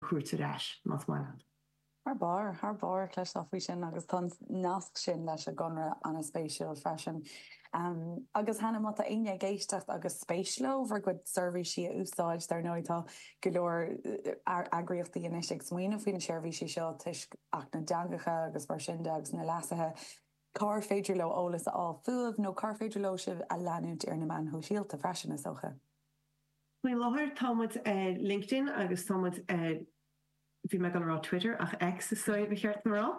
cuairt ar ais, más maith leat. Thar barr, thar barr. cloisteáil faoi sin agus tá an nasc sin leis an gConradh an-spéisiúil freisin. Agus cheana, má tá éinne ag éisteacht agus spéis leo bhur gcuid seirbhísí a úsáid, dar ndóigh tá go leor eagraíochtaí anois ag smaoineamh faoi na seirbhísí seo toisc Acht na dTeangacha agus mar sin de agus na leasuithe, cár féidir leo eolas a fháil fúibh nó cár féidir leo sibh a leanúint ar na meáin shóisialta freisin, is dócha? Faoi láthair tá muid ar LinkedIn agus tá muid, bhí mé ag dul a rá Twitter ach X is dóigh ba cheart dom a rá.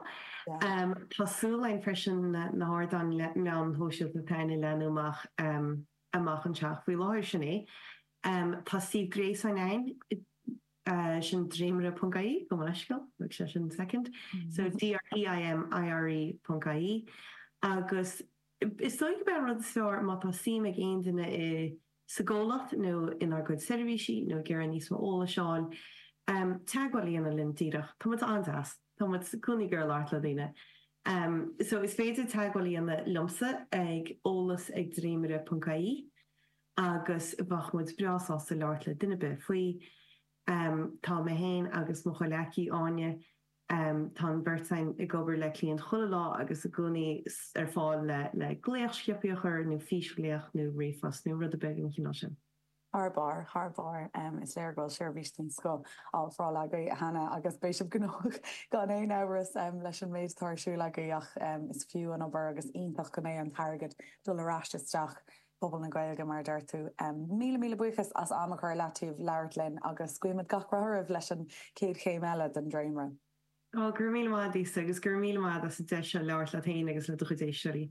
Tá súil againn freisin na hardáin meáin shóisialta atá ann a leathnú amach anseo ach. Faoi láthair sin é. Tá suíomh gréasáin againn, sin Dréimire ponc ie, gabh mo leithscéal, thóg sé sin second, so D-r-e-i-m-i-r-e ponc ie agus is dóigh gurb é an rud is fearr má tá suim ag aon duine i, sa gcomhlacht nó inár gcuid seirbhísí nó ag iarraidh níos mó eolais a fháil, teagmháil a dhéanamh linn díreach. Tá muid an-deas. Tá muid i gcónaí ag iarraidh labhairt le daoine. So is féidir teagmháil a dhéanamh liomsa ag eolas ag dréimire ponc ie agus bheadh muid breá sásta labhairt le duine ar bith faoi. Tá mé féin agus mo chomhleacaí, Áine, Tá an bheirt againn ag obair le cliaint chuile lá agus i gcónaí ar fáil le glaoch sciobtha a chur, nó físghlaoch nó ríomhphost nó rud ar bith den chineál sin. Thar barr, thar barr. Is léir go bhfuil seirbhís den scoth á ofráil agaibh cheana agus beidh sibh gnóthach gan aon amhras leis an méid atá ar siúl agaibh ach is fiú an obair agus iontach go mbeidh an t-airgead ag dul ar ais isteach Pobal na Gaeilge, mar a deir tú, míle míle buíochas as am a chur i leataobh labhairt linn agus guímid gach rath oraibh leis an chéad chéim eile den dréimre. Go raibh míle maith d'Íosa agus go raibh míle maith d'as an deis seo labhairt leat féin agus le do chuid éisteoirí.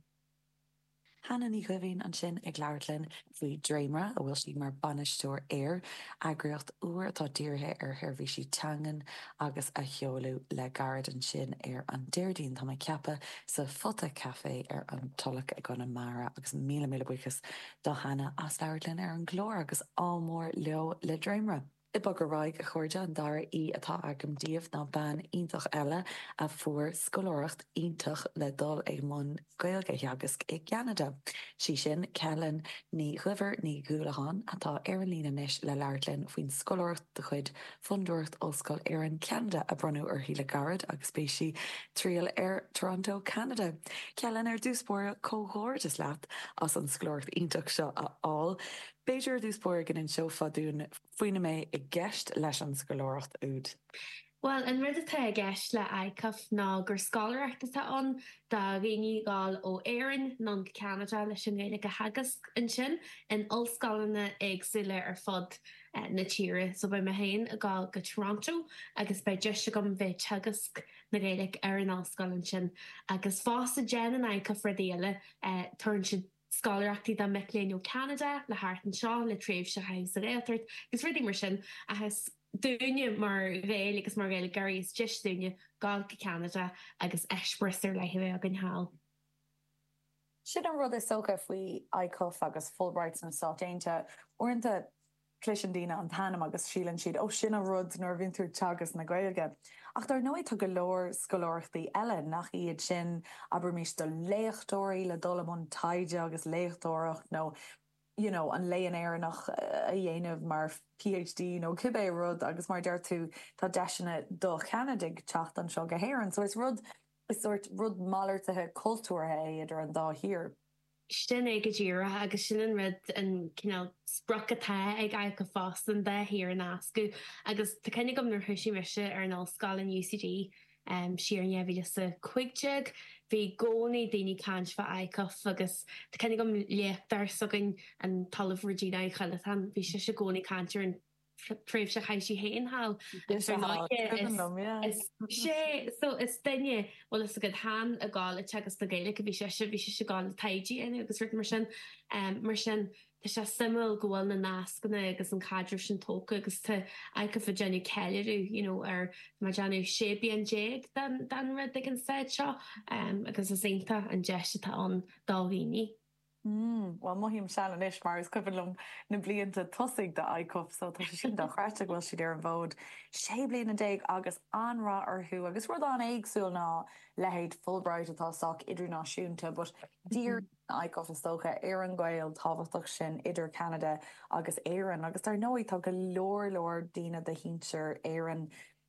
Hannah Ní Dhoimhín ansin ag labhairt linn faoi Dréimre, a bhfuil sí mar bainisteoir air, eagraíocht úr atá dírithe ar sheirbhísí teangan, agus a seoladh le gairid ansin ar an Déardaoin, tá mé ag ceapadh, sa Phota Café ar an Tulach i gConamara agus míle míle buíochas do Hannah as labhairt linn ar an gclár agus ádh mór leo le dréimire! Ag bogadh ar aghaidh, a chairde, an dara aoi atá agam daoibh ná bean iontach eile a fuair scoláireacht iontach le dul i mbun Gaeilge a theagasc i gCeanada. Sí sin Ceithleann Ní Dhuibhir Ní Dhúlacháin, atá ar an líne anois, le labhairt linn faoin scoláireacht de chuid Fondúireacht Ollscoil Éireann Ceanada a bronnadh uirthi le gairid agus beidh sí ag triall ar Toronto Cheanada. Ceithleann, ar dtús báire, comhghairdeas leat as an scoláireacht iontach seo a fháil. B'fhéidir, ar dtús báire, go n-inseofá dúinn faoina mbeidh i gceist leis an scoláireacht úd. Bhuel, an rud atá i gceist le ICUF ná gur scoláireacht atá ann do dhaoine a ghoil ó Éirinn anonn go Ceanada leis an nGaeilge a theagasc ansin in ollscoileanna éagsúla ar fud na tíre. So beidh mé féin ag goil go Toronto agus beidh deis agam bheith ag teagasc na Gaeilge ar an ollscoil ansin. Agus fosta déanann ICUF rudaí eile, tabharann siad. scoláireachtaí do mhic léinn ó Cheanada le theacht anseo le tréimhse a chaitheamh sa Ghaeltacht agus rudaí mar sin ach is dúinne mar Ghaeil agus mar Ghaeilgeoirí is deis dúinne gabháil go Ceanada agus eispéireas ar leith a bheith againn thall. Sin é an rud is dócha faoi ICUF agus Fulbright sna Stáit Aontaithe, uaireanta Cloiseann daoine an t-ainm agus síleann siad, oh sin an rud nuair a bhíonn tú ag teagasc na Gaeilge. Ach dar ndóigh tá go leor scoláireachtaí eile, nach iad sin, abraimis, do léachtóirí le dul i mbun taighde agus léachtóireacht nó you know an Léann Éireannach a dhéanamh mar PhD nó cibé rud agus mar a deir tú tá deiseanna do Cheanadaigh teacht anseo go hÉireann so is rud, is sórt rud malartaithe cultúrtha é idir an dá thír. Sin é go díreach, agus sin an rud, an cineál sprioc atá ag ICUF fosta, an dá thír a nascadh, agus tá cuimhne agam nuair a thosaigh mise ar an ollscoil in UCD siar in 2015, bhí i gcónaí daoine caint fá ICUF agus tá cuimhne agam léachtóir s'againn, an tOllamh Regina Uí Chollatáin, bhí sise i gcónaí ag caint ar an. tréimhse a chaith sí féin thall, agus ar ndóighe is mise, so is duine, bhfuil a fhios agat, tháim a' gabháil a' teagasc na Gaeilge, bhí sise, bhí sise a' gabháil a' taighde a dhéanamh agus rud mar sin. Mar sin tá sé suimiúil go bhfuil na nascanna agus an caidreamh sin tógtha agus tá ICUF a' déanamh ceiliúradh you know ar, tá mé a' déanamh sé bliana déag den rud ag an phointe seo agus is iontach an deis atá ann do dhaoine. Mmm, bhuel mothaím sean anois mar is cuimhin liom na blianta tosaigh de ICUF so tá sé sin dochreidte go bhfuil siad ar an bhfód sé bliana déag agus an-rath orthu agus rud an-éagsúil ná leithéid Fulbright atá sách idirnáisiúnta but díríonn ICUF is dócha ar an ngaol tábhachtach sin idir Ceanada agus Éirinn agus dar ndóigh tá go leor leor daoine de shinsir Éireann